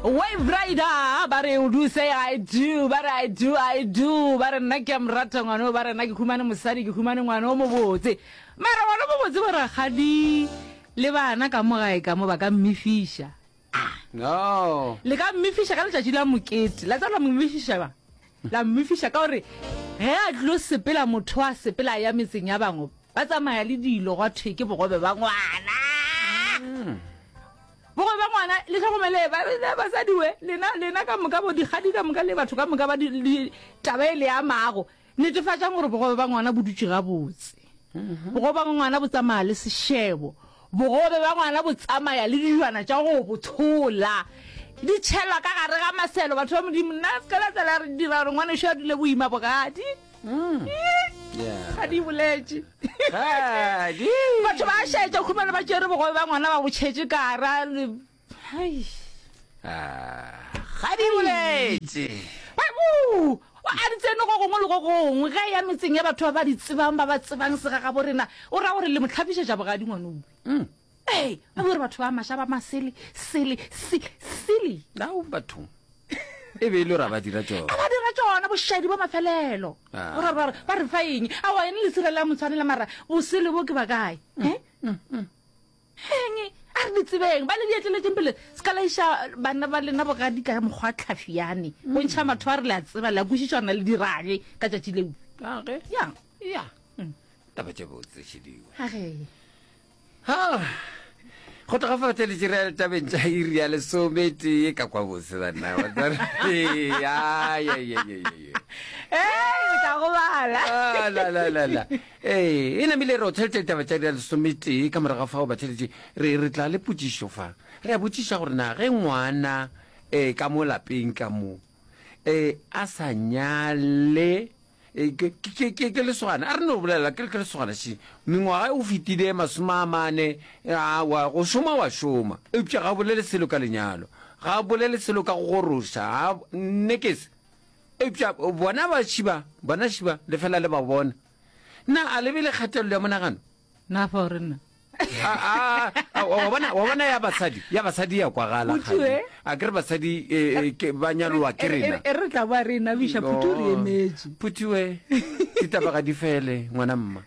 wave rider ah, ba re o duse i do ba re i do i do ba re nna ke a morata ngwano ba re nna ke humane mosadi ke humane ngwano o mobotse mara ngwano o mobotse bo rakgadi le bana ka mo gae ka mo ba ka mmefiša no le ka mmefiša ka letšatši la mokete la tsa la mmefiša ba la mmefiša ka gore ge a tlo sepela motho a sepela ya metseng ya bangwe ba tsamaya le dilo gwa thwe ke bogobe ba ngwana Bogobe bja ngwana le hlogomelee ba le basadi we lena lena ka moka bo dikgadi ka moka le batho ka moka ba di taba e le amago netefatšang gore bogobe ba ngwana bo dutše gabotse mm-hmm. bogobe ba ngwana bo tsamaya le sešebo bogobe ba ngwana bo tsamaya le dijwana tša go bo tshola di tšhelwa ka gare ga maselo batho ba modimo nna se ka la tsela re dira gore ngwana šo a dule boima bogadi ga di boletše batho ba šaetša khumana ba tšere bogobe ba ngwana ba botšhetše kara ga di boletše a di tsene go gongwe le go gongwe ge ya metseng ya batho ba ba di tsebang ba ba tsebang segagabo rena o ra gore le mo tlhapišetša bogadi ngwanong mm. Hey, a bore batho ba masha ba masele, sele, si, silly. Now batho. E be e le ra ba dira tšona. Ba dira tšona boshadi bo mafelelo. Ah. Ora ba ba re fa eng? A wa ene le sirela motshwanela mara bosele bo ke ba kae? Mm, eh? Mm, mm. Heng, a re ditsebeng ba le dietleletseng pele se ka laisha bana ba lena bogadi ka mokgwa tlhafi yane. Go ntšha matho a re le a tseba le a kwisitšwana le dirage ka tšatši leo. Age. Ya. Ya. Taba tše botse šediwe. Age. Ha! Go tloga fa tse letše re tabeng tša iri ya lesome tee ka kwa botse banna wa tsare. Ya ya ya ya ya ya. Ee, ka go bala. Ah, la la la la. Ee, e namile re o theletše taba tša iri ya lesome tee ka morago ga fao ba theletše re re tla le potšišo fa. Re a botšiša gore na ge ngwana eh ka mo lapeng ka mo eh a sa nyale Eh, ke lesogane a re no bolela ke ke lesogane se mengwaga o fetile masome a mane wa go šoma wa šoma eupša ga bolele selo ka lenyalo ga bolele selo ka go goroša nnekese eupša bona ba šiba bona šiba le fela le ba bona na a lebe le kgatelelo ya monagano na fa gore nna wa bona ya basadi ya basadi ya kwagala gale a ke re basadi e, e, ke ba nyalowa ke rena e re tla ba re na bisha phuthi re emetse phuthiwe ditabaga di fele ngwana mma